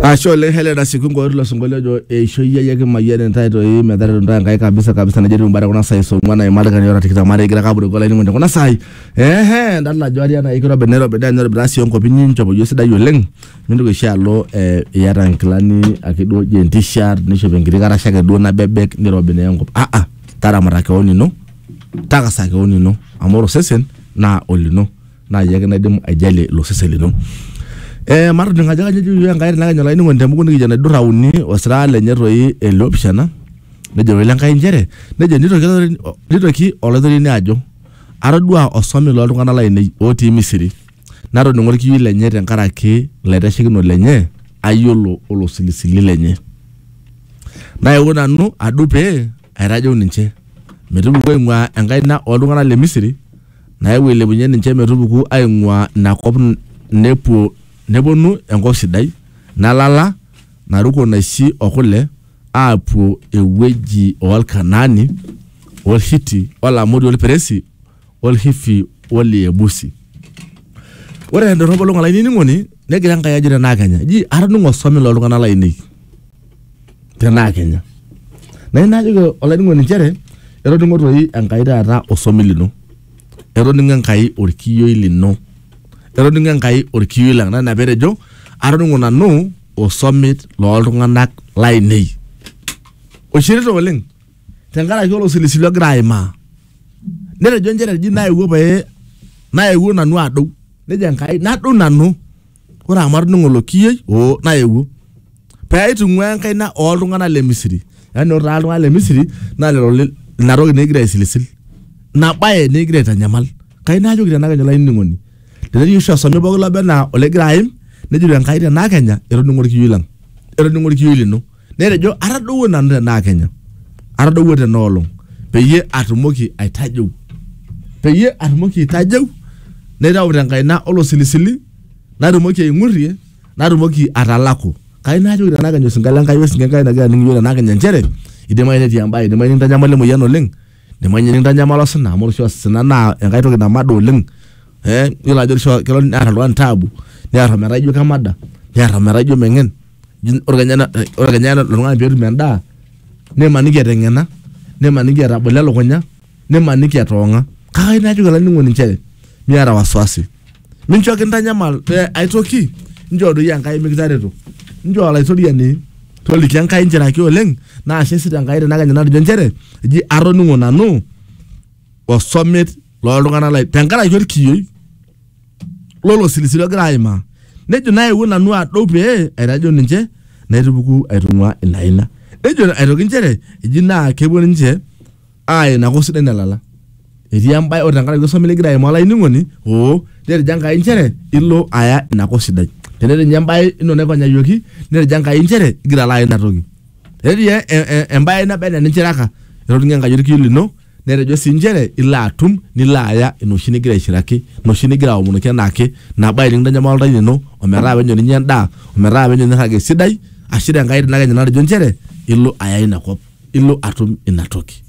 Ashe oleng Helena Sikungo tilo sinkolio ojo eishoi ai ake mayian intae toi metaretu intae Enkai kabisa kabisa nejo etiu imbaa kuna saai saa ong'uan aimari kani ora tikitam are igira ake apurroko olainining'oni kuna saai ehe idolta ajo ari enaa kirobi nairobi naa enairobi taa sii enkop inyi inchopo iyie esidai oleng mintoki oshi alo eh, iyata inkilani ake duo jean t-shirt nishop enkiti karasha ake duo nabebek nirobi naa enkop ah ah taramata keon ino takasa keon ino amu ore osesen naa olino naa iyie ake naidim aijalie ilo sesen lino. Eh, matoning ajo kajo ejo iyiook Enkai tenakenya olainining'oni temuku nikijo enaidurra uni osira lenye toi ele opishana nejo wele Enkai inchere nejo nitoki olaitoriani nitoki olaitoriani ajo atodua osome loltung'anak lainei otii Misiri natoning'o orkiyioi lenye tenkaraki ilaitashekinok lenye ayiolo olosilisili lenye naewuo nanu adup pee aitajeu ninche metupuku aing'ua enkaina oltung'anak le Misiri nayewuo ailepunye ninche metupuku aing'uaa ina kop nepuo neponu enkop sidai nalala naruko naishi o kule aapuo ewueji o Lkanaani o Lhiti o Lamori o Lperesi o Lhifi o Liebusi. Ore te ndorropo olong' olainining'oni, negira Enkai ajo te naa kenya, eji, Atoning'o osome loo ltung'ana laainei. tenaa kinya na ina ajoki olainining'oni nchere etoningo toi enkai taata osomi lino etoningo enkai orkiyioi lino etoningo enkai orkiyioi lang na ina petejo atoningo nanu osomit loltung'anak lainei oishirita oleng tenkaraki olosilisili ogira aimaa netejo nchere eji naewuo pae naewuo nanu adou nejo enkai nadou nanu ore amu atudung'oloki iyie oo naewuo pee aitung'uaa enkaina ooltung'anak le Misiri. Yaani ore taata iltung'anak le Misiri naa lelo li- ina toki naa egira aisilisil. Ina bae naa egira aitanyamal. Kai naajoki tena kenya olainining'oni tenetii oshi osome pooki loba enaa ologira aim nejoito Enkai tena kenya etoning'o olkiyioi lang', etoning'o olkiyioi lino. netejo atadowuo nanu tenaa kenya atadowuo tena olong peyie atumoki aitajeu peyie atumoki aitajeu naitau tenkaina olosilisili natumoki aing'urrie natumoki atalaku kai najoki tenaa kenya osinka lenkai wesinka enkai nagira aning iyiok tenaa kenya nchere idimayu netii embae idimayu nikintanyamala emoyian oleng idimayu ninye nikintanyamala osina amu ore oshi osina naa enkae toki namada oleng eh yiolo ajo kisho kelo nearr oltung'ani taabu nearr ometaa ijo kemada nearr ometaa ijo meng'en ore kenya ena- ore kenya ena- lelo tung'anak peetum endaa nimaniki eteng'ena nimaniki etabolo elukunya nimaniki etoong'a kake ayieu najoki olainining'oni inchere miata wasiwasi mincho kintanyamal eh, aitoki inchoo doi enkai mikitareto inchoo olaitoriani toliki enkai inchere ake oleng naa ashe sii tenkai tenakenya natejo inchere eji atoning'o nanu osomet loltung'anak lai tenkaraki orkiyioi lolo silisili ogira aimaa nejo naewuo nanu adou pee aitajo ninche naitupuku aitung'ua ina aina nejo aitoki inchere eji naa kepuo ninche aaya ina kop sidai nalala etii embae ore tenkaraki osomi ligira aimaa olainining'oni oo netejo enkai inchere ilo aya ina kop sidai tenetii ninye embae ino naipanyayioki netejo enkai inchere igira alo aya ina toki tenetii e- e- embae naba enaa eninchiraka etoning'o enkai orkiu lino netejo sii nchere ilo atum nilo aya ina oshi nigira aishiraki ina oshi nigira aomonoki enaake nabo ae nikintanyamal oltau lino ometaa penyo ninye endaa ometaa penyo nirrag esidai ashu tenkae rina ake ninye natejo nchere ilo aya inakop ilo atum inatoki.